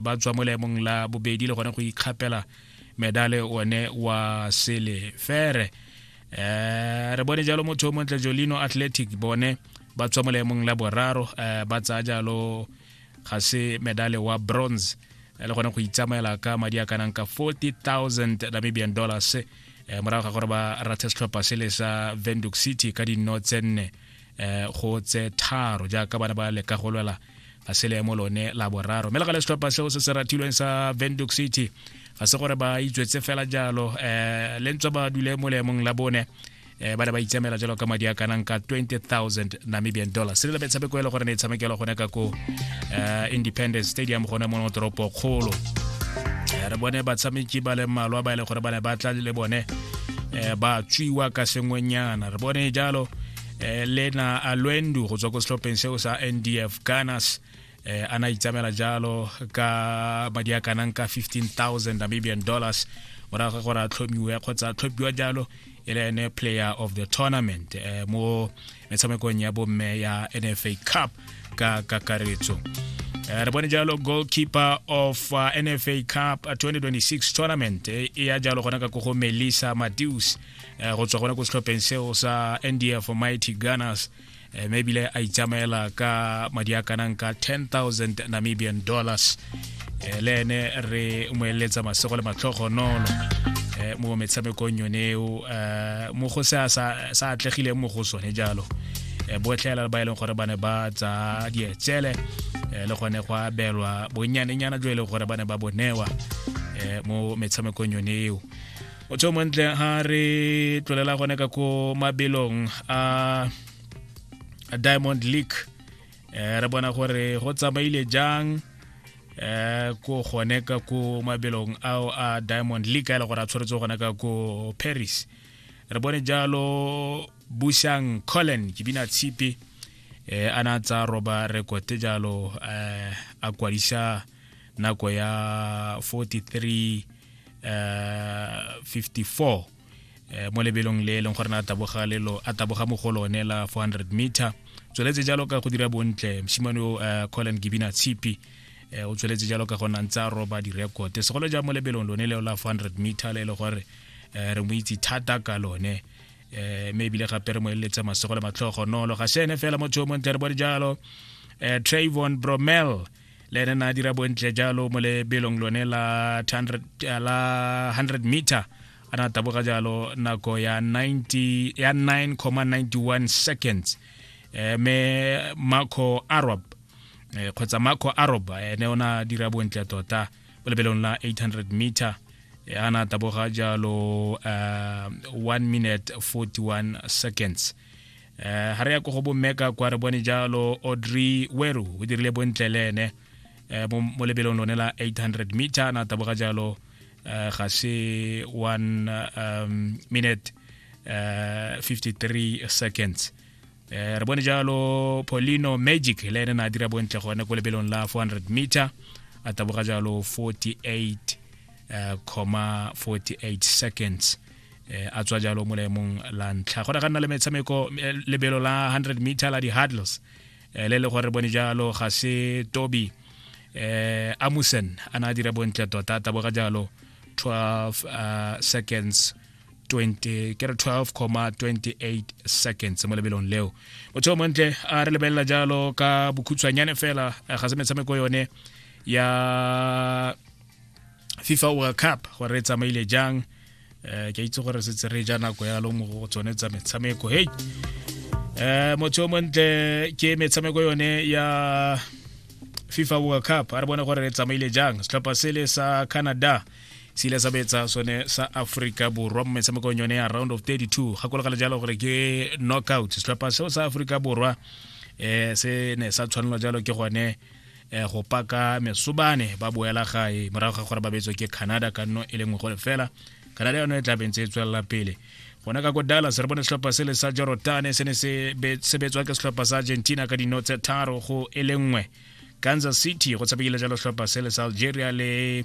ba tswa mo leemong la bobedi le gone go ikgapela medale one wa selefere um re bone jalo motho o montle jolino athletic bone ba tswa mo leemong la boraro um ba tsaya jalo ga se medale wa bronze eh, le gone go itsamaela ka madi a kanang ka 40000 namibian dollars um morago ga gore ba rathe setlhopha se le sa venduk city ka dinno tse nne um go tse tharo jaaka bana ba leka go lwela ga se leemo lone la boraro mme le gale setlhopha seo se se rathilweng sa venduc city ga se gore ba itswetse fela jalo um le ntswa ba dule mo leemong la bone um ba ne ba itsamela jalo ka madi a kanang ka 20000 namibian dollar se le metshameko e le gore ne e tshamekelo gone ka ko um independence stadium gone mo toropo kgolo re bone batshameki ba le mmalwa ba e le gore ba ne ba tla le bone um ba tswiwa ka sengwenyana re bone jalo eh, lena alwendu go tswa ko setlhopheng seo sa ndf ganas eh, a na itsamela jalo ka madi a kanang ka 15000 namibian dollars morago gore a tlhomiwe kgotsa a tlhopiwa jalo e le ene player of the tournament eh, mo metshamekong ya bomme ya nfa cup ka kakaretso eh, re bone jalo goalkeeper of uh, nfa cup 2026 uh, tournament eh, e ya jalo gona ka kogo melissa madius eh, go tswa gona ko setlhopheng seo sa ndf mighty gunners eh, mme ebile a itsamaela ka madi a kanang ka 10000 namibian dollars eh, le ene re mo eletsa masego le matlhogonolo eh, mo metshamekong yone eo eh, mo go se sa atlegileng mo go sone jalo eh, botlhela ba e leng gore ba ne ba tsa dietsele eh, le gone go abelwa bonnyanenyana jo e leng gore ba ne ba bonewa eh, mo metshamekong yone eo o tsho montle ha re tlolela gone ka ko mabelong a diamond league eh, re bona gore go tsamaile jang eh ko gone ka ko mabelong ao a diamond league a e le gore a tshwaretse gone ka ko paris re bone jalo busang collen ke bina tshipi eh a na tsa roba rekote jalo eh a kwadisa nako ya 43 uh, 54 eh, mo lebelong le e leng gore na taboga lelo a taboga mo go lone la 400 meter tsweletse jalo ka go dira bontle mosimane o eh, colin gibina tshipi eh, o tsweletse jalo ka gona ntse a roba direkote segolo ja mo lebelong lone leo la 400 meter le e le gore eh, re mo itse thata ka lone eh, mme ebile gape re mo eleletse masego le matlhogo nolo ga sene fela motho o montle re bo dijalo eh, travon bromel le ene na dira bontle jalo mo lebelong lone la 100 meter a na taboga jalo nako ya 90 ya 9,91 seconds eh, me marco arab eh, kgotsa marco arab ene o na dira bontle tota mo lebelong la 800 meter eh, a na taboga jalo uh, eh, 1 minute 41 seconds eh ha re ya go go bommeka kwa re bone jalo audrey weru o dirile bontle le ene eh, mo lebelong lone la 800 meter na taboga jalo eh, ga se one um, minute uh, eh, 53 seconds re bone jalo polino magic le ene na dira bontle gone ko lebelong la 400 meter a taboga jalo 48 uh, 48 seconds eh, a tswa jalo mo leemong la ntlha go ne ga nna le metshameko eh, lebelo la 100 meter la di-hurdles eh, le le gore bone jalo ga se toby eh, amusen a ne a dira bontle tota taboga jalo 12 uh, seconds 20 ke re 12,28 seconds mo lebelong leo motho o montle a re lebelela jalo ka bokhutshwanyane fela eh, ga se metshameko yone ya fifa world cup gore e tsamaile jang um ke itse gore setse re ja nako yalo mo go tsone tsa metshameko hei um motho o montle ke metshameko yone ya fifa world cup a re bone gore re tsamaile jang setlhopha sele sa canada se ile sa betsa sone sa aforika borwa mo metshamekong yone ya round of 32 gakologale jalo gore ke knockout setlhopha seo sa aforika borwa um se ne sa tshwanelwa jalo ke gone eh, go paka mesobane ba boela gae morago ga gore ba betswe ke canada ka nno e le nngwe go lefela canada yone e tla bentse e tswelela pele gona ka ko dallas re bone setlhopha sele sa jorotane se ne se betswa ke setlhopha sa argentina ka dino tse tharo go e le nngwe kansas city go tshamekile jalo setlhopha sele sa algeria le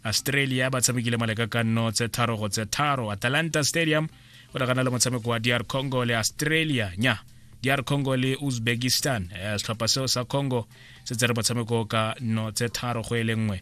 australia ba tshamekile maleka ka nno tse tharo go tse tharo atalanta stadium go nagana le motshameko wa dr congo le australia nya dr congo le uzbekistan eh, setlhopha seo sa congo se tsere motshameko ka no tse tharo go e le nngwe